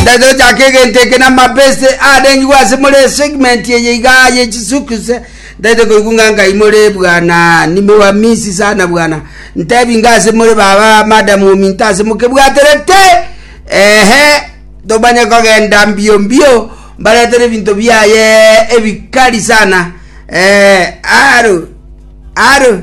Tari tochaka egento eke namabeste arengigwe ase more esegment eye iga yechisukuse tari tokoigwa ng'a ngai more bwana nimewamisi sana bwana ntebi nga ase more baba madam ominto ase mokebwaterete ehe tomanye kogenda mbio mbio mbaretere ebinto biaye ebikari sana eh, aro aro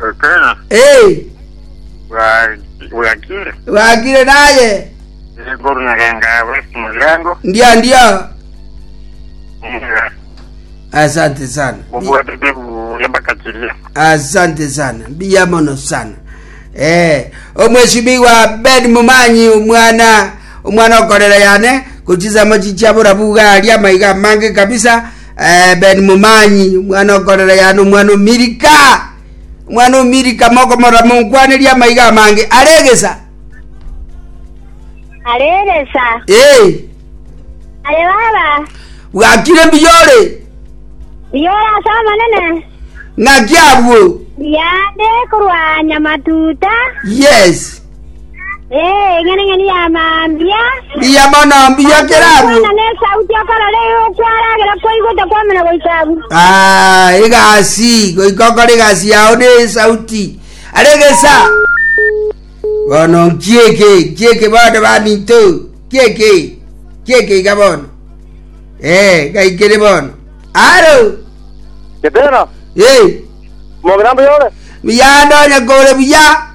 Ekeene, Ee, bwa- bwakire. bwakire naye. Igoro naganga bwesi mugirango. Ndio, ndio. Mugira. Asante sana. Bi- Bubwatete buya bakachiria. Asante sana. Mbiya mono sana. Eh, omweshimiwa Ben Mumanyi omwana omwana okorera yane kuchisemo chichabura buga aria maiga mange kabisa Ebedi momanyi, omwana o Korelea, na omwana o Milika, omwana o Milika, mokomorora monkwanerie amaiga amange are egesa. Are egesa. Ee, Aye baba. bwakire mbuya ore, Biyora ase Omonene. ng'aki abwo. Yande korwa nyamatuta. Yes. Eh, eng'eneng'eni ya mambia. Mbuya mono mbuya kerabu Kwana ne sauti okorore okwaragera kwaigwete kwamena goikabu. Ah, egasi goikokora egasi yao ne sauti are gesa bono nkieke nkieke bono baminto kieke kieke iga bono eh gaikere bono aro Getera, eh mogera mbuya ore. muyando nyakore buya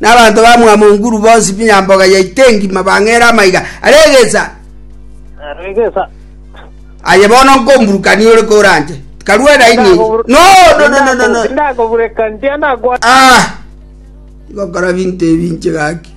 Na abanto ba mwamo nguru bonsi b'enyamboga yaito engima bang'eera amaiga are egesa. Aye bono nkomburukania ore koranche, tikarua naye ninche. Indakobureka nchie na gwa. Igokora binto ebi inche gaki.